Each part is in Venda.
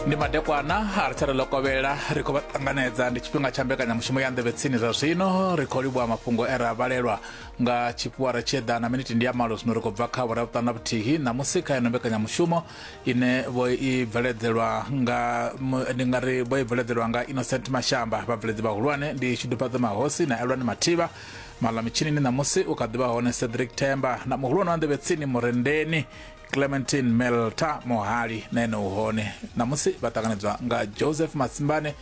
ndi madekwana a ri tshare lokovhela ri khou vha ṱanganedza ndi tshifhinga tsha mbekanyamushumo ya nḓevhe tsini zwa zwino ri khou livhuwa mafhungo e ra vhalelwa nga tshifhiwara tshi eḓana miniti ndi ya malo zwino ri khou bva kha vhuravhuṱanu na vhuthihi ṋamusi kha ino mbekanyamushumo ine vho i bveledzelwa nga ndi nga ri vho i bveledzelwa nga innocent mashamba vhabveledzi vhahulwane ndi tshidufhadzo mahosi na elwani mathivha maḽa mitshinini ṋamusi u kha ḓivha hone cedric themba na muhulwane wa nḓevhe tsini murendeni clementine melta mohali na ene u hone ṋamusi vha ṱanganedzwa nga joseph masimbane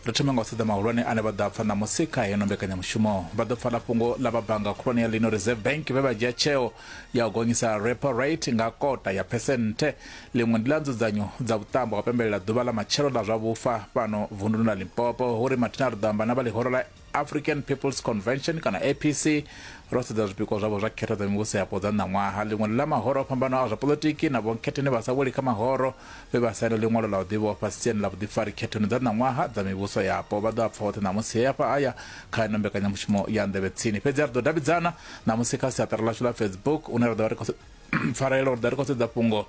ri thome nga u sedza mahulwane ane vha ḓo a pfa ṋamusi kha heno mbekanyamushumo vha ḓo pfala fhungo ḽa vha bannga khulwane ya lino reserve bank vhe vha dzhia tsheo ya u gonyisa repo rate nga kota ya phesenthe ḽiṅwe ndi ḽa nzudzanyo dza vhuṱambo ha pembelela ḓuvha ḽa matshelo ḽa zwa vhufa fhano vunduni ḽa limpopo hu ri mathina ri ḓo amba na vha ḽihoro ḽa African People's Convention kana APC ro sedza zwipikwa zwavho zwa khetho dza mivhuso yapo dza ṋaṅwaha ḽiṅwe ḽa mahoro o fhambanaho a zwa poḽotiki na vhonkhetheni vha sa weli kha mahoro vhe vha saina ḽiṅwalo ḽa u ḓivhofha siani ḽa vhuḓifari khethoni dza ṋaṅwaha dza mivhuso yapo vha ḓo a pfa hoṱhe ṋamusi he afha aya kha ino mbekanyamushumo ya nḓevhe tsini fhedzi a ri ḓo davhidzana ṋamusi kha siaṱari ḽashu ḽa Facebook une ra ḓo vha ri khou pfarela uri ḓa ri khou sedza fhungo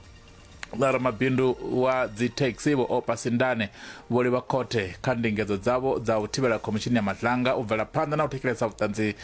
ḽa ramabindu wa dzithekisi vho Opa Sindane vho livha khothe kha ndingedzo dzavho dza u thivhela khomishini ya madlanga u bvela phanḓa na u thetshelesa vhuṱanzi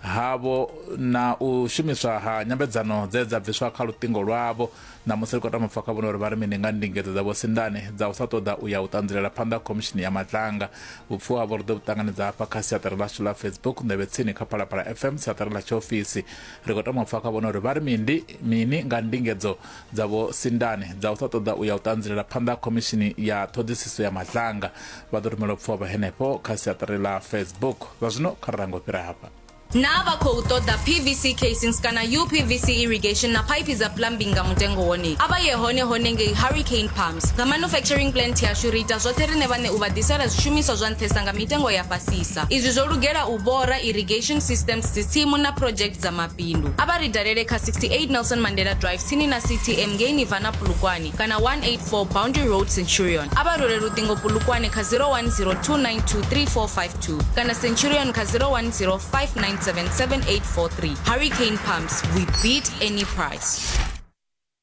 havho na u shumiswa ha nyambedzano dze dza bviswa kha luṱingo lwavho na musi ri khou tama pfa kha vhone uri vha ri mini nga ndingedzo dza vho Sindane dza u sa ṱoḓa u ya u ṱanzilela phanḓa khomishini ya madlanga vhupfuwa havho ri ḓo vhu ṱanganedza hafha kha siaṱari ḽashu ḽa Facebook nḓevhe tsini kha Phalaphala FM siaṱari ḽa tshiofisi ri khou tama pfa kha vhone uri vha ri mindi mini nga ndingedzo dza Vho Sindane dza u sa ṱoḓa u ya u ṱanzilela phanḓa ha Khomishini ya Ṱhoḓisiso ya Maḓlanga vha ḓo rumelwa pfuhavha henefho kha siaṱari ḽa Facebook. Zwa zwino kha ri range u fhira hafha. Naa vha khou ṱoḓa PVC casings kana UPVC irrigation na phaiphi dza plumbing nga mutengo wone? A vha ye hone hone ngei Hurricane Pumps. Nga manufacturing plant yashu ri ita zwoṱhe riṋe vhaṋe u vha ḓisela zwishumiswa zwa nṱhesa nga mitengo ya fhasisa. Izwi zwo lugela u bora, irrigation systems, dzitsimu na project dza mabindu. mabindu. A vha ri dalele kha 68 Nelson Mandela Drive tsini na CTM ngei Nirvana Polokwane kana 184 Boundary Road Centurion. A vha rwele luṱingo Polokwane kha 0102923452 kana Centurion kha 0105977843. Hurricane Pumps, we beat any price.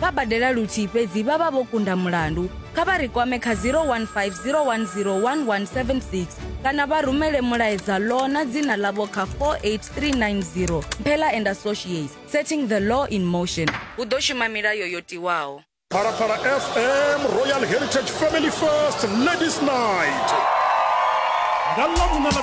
vha badela luthihi fhedzi vha vha vho kunda mulandu kha vha ri kwame kha 0150101176 kana vha rumele mulaedza law na dzina ḽavho kha 48390 mphela and associates setting the law in motion hu ḓo shuma milayo yo tiwaho phalaphala fm royal heritage family first ladies night nga ḽa vhuna ḽa